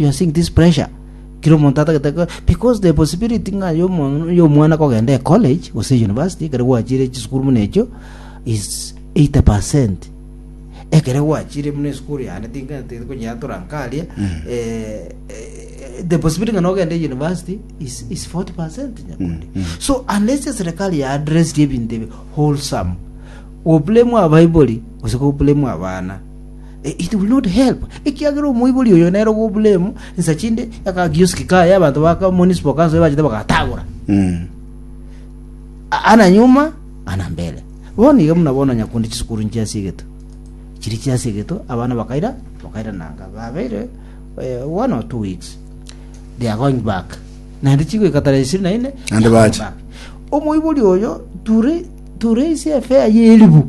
You are seeing this pressure? Kera omonto atagete ko- because the possibility ng'a yomo- yomwana kogenda e college gose e university ekero gwachire chisukuru buna echio is 80 percent ekero gwachire buna esukuru yane ting'ete konyeatora nkaria eh, eh, the possibility ng'a nogenda e university is, is 40 percent nyakundi so unless eserikali ya address ebinto ebi wholesome goblame abaibori gose goblame abana It will not help, ekiagera omoibori oyo nere ogo oburemu insa chinde y'akakioski kaye abanto ba ka municipal council bachete bagatagora Mm. A- ana nyuma ana mbere bono iga buna bono nyakunde chisukuru nchia ase egeto chiri chia ase egeto abana bakaira bakaira nanga babeire eh, one or two weeks they are going back naende chigoika tarehe ishirini na ine Naende they are going bache. back. omoibori oyo ture ture ise efea y'elibu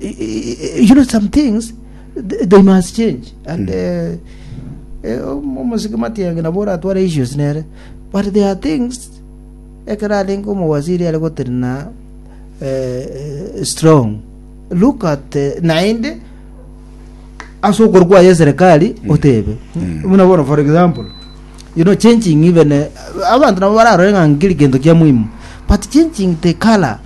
you know some things th- they must change and eh, eh, om- omosike matiange nabo oratware issues nere but there are things ekero arenge omowaziri are gotenena eh, eh, strong look at eh, naende ase okoru kwaye serikali otebe buna bono for example you know changing even eh, abantu nabo bararore ng'a nkeri gento kia muhimu but changing the color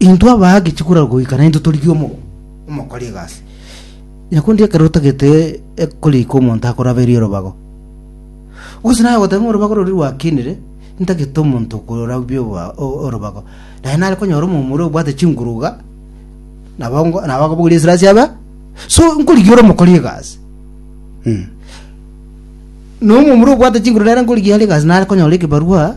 Intwe abaagachia korwa goika naintwe torigie omo- omokori egasi. Onye korende ekero otagete ekori iko omonto akoraberie orobago, gose naye ogoteba ng'a orobago roria rwakinire, ntagete omonto okorabia oboa- o- orobago. Naye nare konyora omomura obwate chinguru iga, nabo ngo nabo akobogoria esira ase aba, so nkorigia ore omokori egasi. Na omomura obwate chinguru nere nkorigia are egasi nare konyora ekebarua.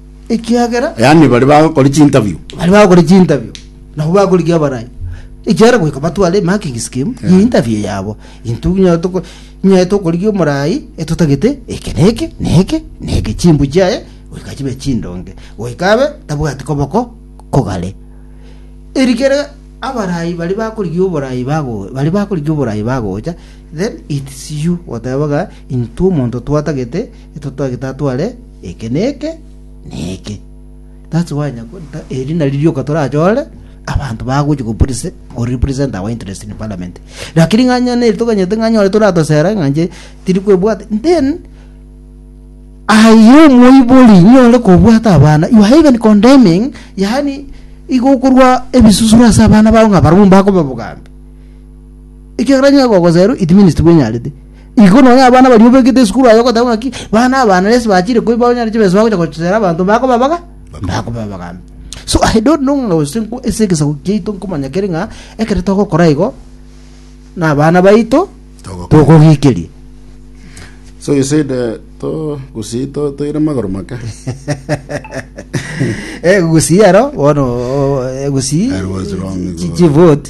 ekiagera yaani bari bagokora chinterview bari bagokora chinterview nabo bakorigia abarai ekiagera goika batware marking scheme ya interview yabo intwe nginya toko nyaye tokorigia omorai etotagete eke na eke na eke na eke chimbu chiaye goika chibe chindonge goika abe tabwati koboko kogare erikere abarai bari bakorigia oborai bago bari bakorigia oborai bagocha then its you otebaga intwe omonto twatagete Intwe twagete atware eke na eke na eke. That's why nyako- nta- eri nari rioka torachore abanto bagochi go prese- go represent our interest in parliament lakini ng'anya neri toganyete ng'anya ore toratosera ng'anche tiri kwebwate then aye omoibori nyore kobwata abana you are even condemning yaani igo okorwa ebisusuro ase abana bao ng'a barabwo mbakoba bogambi ekiagera onye gogoserwa it means tibwenyarete Igo nonya abana baria obegete esukuru aye ogoteba ng'aki bana abana resi bachire koi banyare chibesa bagocha gochera abanto bakobabaga bakobabagambe so i don't know ng'a gose nko- ase egesaku kiaito nkomanya kere ng'a ekero togokora igo na abana baito Togokora. togogekeria So you said uh, to gusi to toire magoro make. Eh, gusii aro bono oh, eh, gusii I was wrong, chi- go. chivote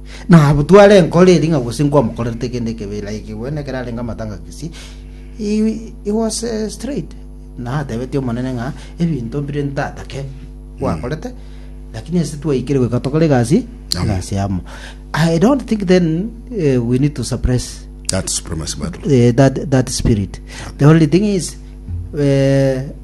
Nabo tware enkoro eria ng'a gose nkwamokorerete kende ekebi ere aikigwe, na ekero arenge amatanga Kisii, he, he was eh, straight na atebetie Omonene ng'a ebinto mbire ntatake gwakorete, lakini ase twaikire goika tokore egasi, Amo. egasi amo. I don't think then eh, we need to suppress That supremacy battle. eh, that, that spirit. The only thing is eh,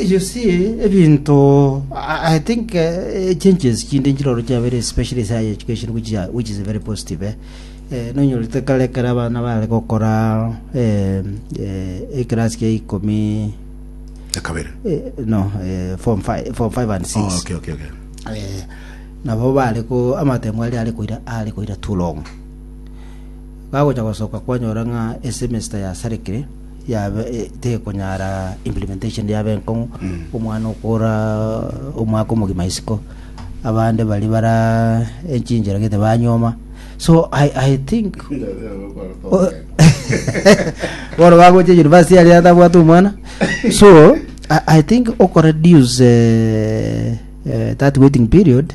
you see ebinto I, I think uh, changes chinde nchiroro chiabere especially sa education which, are, which is very positive eh. Eh, nonyorete kare kare abana bare gokora eh, eh, ekerasi kia ikomi ekabere eh, no eh, form 5 form 5 and 6 oh, okay, okay, okay. eh, nabo bare ko amatengo ari ari koira ari koira too long bagocha gosoka kwanyora ng'a esemester yasarekire yabe tekonyara implementation yabe enkong'u omwana okora omwaka omogima isiko abande bari bara enchinchera gete banyoma so i, I think Oh. bono bagocha university yari atabwate omwana so I, i think okoreduce eh, eh, that waiting period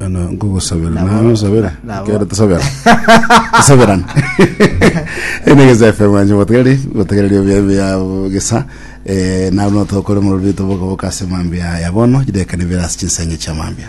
Bono nkogosabera Nabo- naye osabere nabo. kero tosabera tosaberana ene gesa fm anje botegeri botegereri obuya buya gesa eh, nabo notokore mororito boka boka ase mambia ya bono jidekane bera ase chinsenge chia mambia